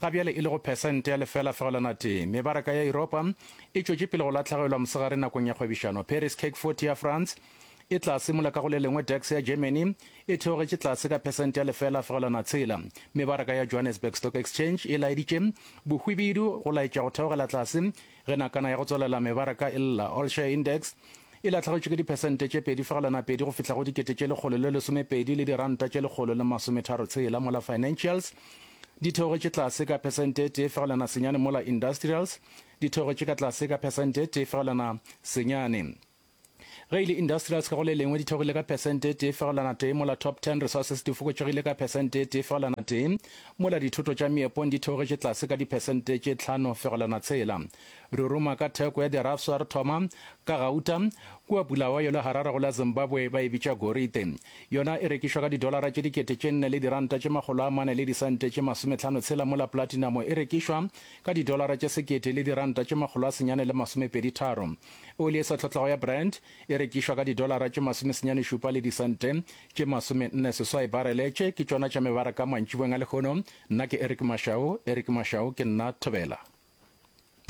Ga bjale e lego phesente ya lefela fegelwana tee, mebaraka ya Yuropa e tšwetše pele go latlhegelwa mosegare nakong ya kgwebišano. Paris CAC 40 ya France e tla simola ka go le lengwe DAX ya Germany e theogetše tlase ka phesente ya lefela fegelwana tshela. Mebaraka ya Johannesburg Stock Exchange e laeditše bohwibidu go laetša go theogela tlase Ge nakana ya go tswalela mebaraka e lla, All Share Index, e lahlegetšwe ke diphesente tše pedi fegelwana pedi go fihla go dikete tše lekgolo le lesomepedi le diranta tše lekgolo le masometharo tshela mola Financials, di theogetše tlase ka phesente e tee fegelwana senyane mola Industrials, di theogetše ka tlase ka phesente e tee fegelwana senyane. Ge e le industrials ka go le lengwe di theogile ka phesente e tee fegelwana tee, mola top 10 resources di fokotšegile ka phesente e tee fegelwana tee, mola dithoto tša meepong di theogetše tlase ka diphesente tše tlhano fegelwana tshela. Ruruma ka theko ya dirafswa re thoma ka gauta, kua Bulawayo le Harare go la Zimbabwe ba e bitša gorite. Yona e rekišwa ka didolara tše dikete tše nne le diranta tše makgolo a mane le disente tše masometlhano tshela mola platinamo e rekišwa ka didolara tše sekete le diranta tše makgolo a senyane le masomepedi tharo. Oli e sa tlhotlego ya Brent e rekišwa ka didolara tše masomesenyane šupa le disente tše masomenne seswai barele. Tše ke tšona tša mebaraka mantšiboeng a lehono. Nna ke Eric Mashau. Eric Mashau, Ke nna Thobela.